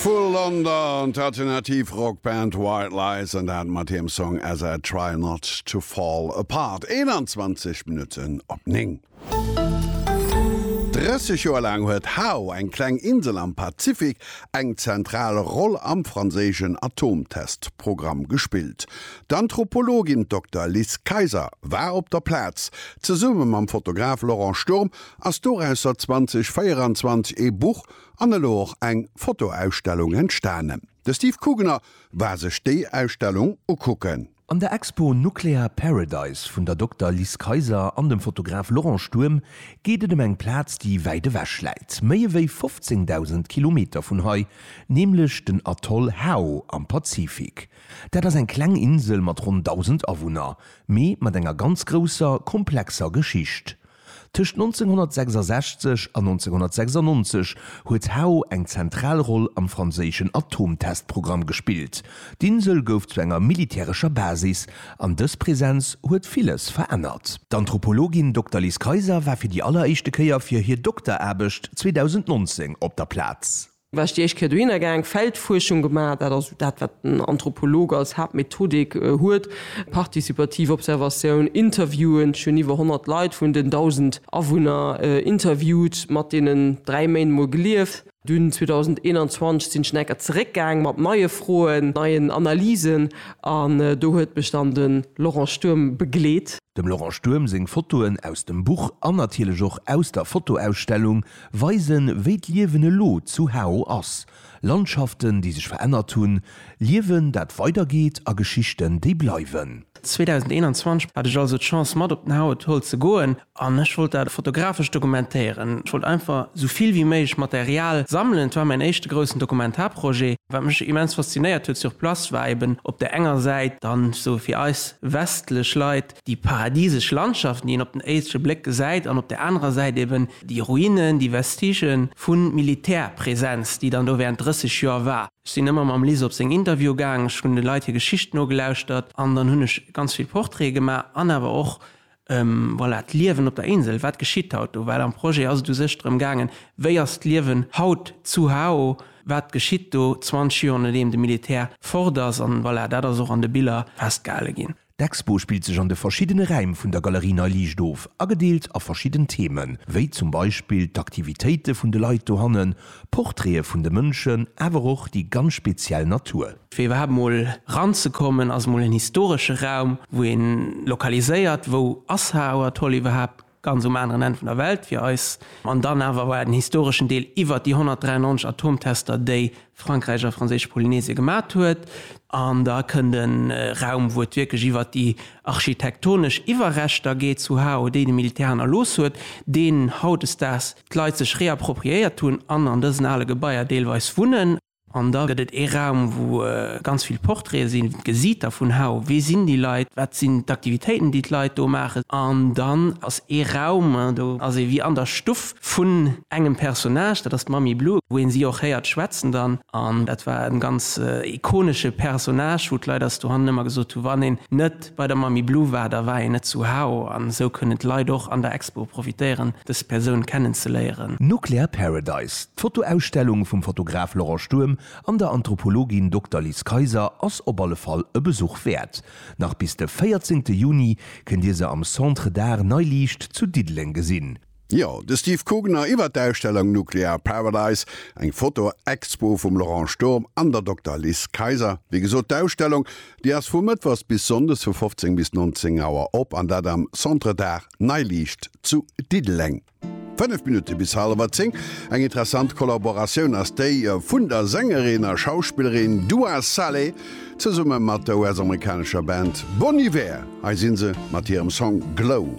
Vu London d'alternativ Rockband White Lies an dat mat hirem Song As I Try Not To Fall Apart. 21 Minutten op 9. 30 Joer laang huet Hao, eng kleng Insel am Pazifik, eng zentral Roll am franséischen Atomtestprogramm gespillt. D'Anthropologin Dokter Liz Kayser war op der Plaz. Zesumme mam Fotograf Laurent Sturm ass dorausser 2024 ee Buch An elo och eng Fotoausstellung entstanen. De Steve Kugener war sech déi Ausstellung ukucken. An der Expo Nuclear Paradise vun der Dokter Liz Kayser an dem Fotograf Laurent Sturm geet et ëm eng Plaz, déi wäit ewech läit, méi ewéi 15.000 Kilometer vun hei, nämlech den Atoll Hao am Pazifik. Dat ass eng kleng Insel mat ronn 1.000 Awunner, mee mat enger ganz grousser, komplexer Geschicht. Tëscht 1966 an 1996 huet Hao eng zentral Roll am franséischen Atomtestprogramm gespillt. D'Insel gouf zu enger militärescher Basis, an dës Presenz huet villes verännert. D'Anthropologin Dokter Liz Kayser war fir déi alleréischte Kéier fir hir Dokteraarbecht 2019 op der Plaz. War ech déi éischt Kéier dohinner gaang, Feldfuerschung gemaach, dat ass esou dat, wat den Anthropolog als Haaptmethodik huet, partizipativ Observatioun, Interviewen, ech hunn iwwer 100 Leit vun den 1.000 Awunner interviewt, mat deenen dräi Méint mol gelieft. Dunn 2021 sinn ech nach eng Kéier zeréck gaang, mat neie Froen, neien Analysen, an do huet mech dann de Laurent Sturm begleet. Dem Laurent Sturm seng Fotoen aus dem Buch an natierlech och aus der Fotoausstellung Weisen, wéi d'Liewen elo zu Hao ass, Landschaften, déi sech verännert hunn, Liewen, dat weidergeet a Geschichten, déi bleiwen. 2021 hat ech also d'Chance mat op den Hao-Atoll ze goen an ech wollt dat fotografesch dokumentéieren. Ech wollt einfach sou vill wéi méiglech Material sammelen. Et war mäin éischte groussen Dokumentarprojet. Wat mech immens faszinéiert huet sur place, war eben op der enger Säit dann, sou fir eis westlech Leit, déi paradisesch Landschaften, déi een op den éische Bléck gesäit, an op där anerer Säit eben déi Ruinen, déi Vestigen vu Militärpräsenz, déi dann do während 30 Joer war. Ech sinn ëmmer mam Liz op seng Interviewe gaang, ech hunn de Leit hir Geschicht nogelauschtert an dann hunn ech ganz vill Portraite gemaach an awer och, voilà, d'Liewen op der Insel, wat geschitt haut do? Well am Projet ass et u sech drëm gaangen, wéi ass d'Liewen haut zu Hao, wat geschitt do 20 Joer nodeem de Militär fort ass? An, voilà, dat ass och an de Biller festgehale ginn. D'Expo spillt sech an de verschiddene Räim vun der Galerie Nei Liicht of, agedeelt a verschidden Themen, wéi zum Beispill d'Aktivitéite vun de Leit dohannen, Portraite vun de Mënschen, awer och déi ganz speziell Natur. Fir iwwerhaapt mol ranzekommen, ass mol en historesche Raum, wou ee lokaliséiert, wou ass Hauerthol iwwerhaapt. ganz um aneren Enn vun der Welt fir eis, an dann awer war den historeschen Deel iwwert déi 193 Atomtester, déi Frankräich a franséisch Polynesie gemat huet. An da kënnt e Raum, wou et wierklech iwwert déi architektonesch Iwwerreschter geet zu Hao, déi de Militär hannerlooss huet, deen hautdesdaags d'Leit sech reappropriéiert hunn an an dësen ale Gebaier deelweis wunnen. An da gëtt et ee Raum, wou ganz vill Portraite sinn, gesitt Der vun hau, wie sinn déi Leit, wat sinn d'Aktivitéiten, déi d'Leit do maachen. An dann ass ee Raum, do ass ee wéi an der Stuff vun engem Personnage, dat ass d'Mamie Blue, wou ee si och héiert schwätzen dann. An dat war e ganz ikonesche Personnage, wou d'Leit eis dohannen ëmmer gesot hunn, wann een net Bei der Mamie Blue war der war een net zu hao an esou kënnen d'Leit och an der Expo profitéieren dës Persoun kennen ze léieren. Nuclear Paradise, d'Fotoausstellung vum Fotograf Laurent Sturm an der Anthropologin Dokter Liz Kayser ass op alle Fall e Besuch wäert. Nach bis de 14 Juni kënnt Dir se am Centre d'Art Nei Liicht zu Diddeleng gesinn. Jo, de Steve Kugner iwwert d'Ausstellung Nuclear Paradise, eng Foto-Expo vum Laurent Sturm an der Dokter Liz Kayser. Wéi gesot, d'Ausstellung, déi ass vu mëttwochs bis sonndes vu 15 bis 19 Auer op, an dat am Centre d'Art Neiliicht zu Diddeleng. Fënnef Minutte bis halewer zéng. Eng interessant Kollaboratioun ass déi vun der Sängerin a Schauspillerin Dua Saleh zesumme mat der US-amerikanescher Band Bon Iver. Hei si se mat hirem Song Glow.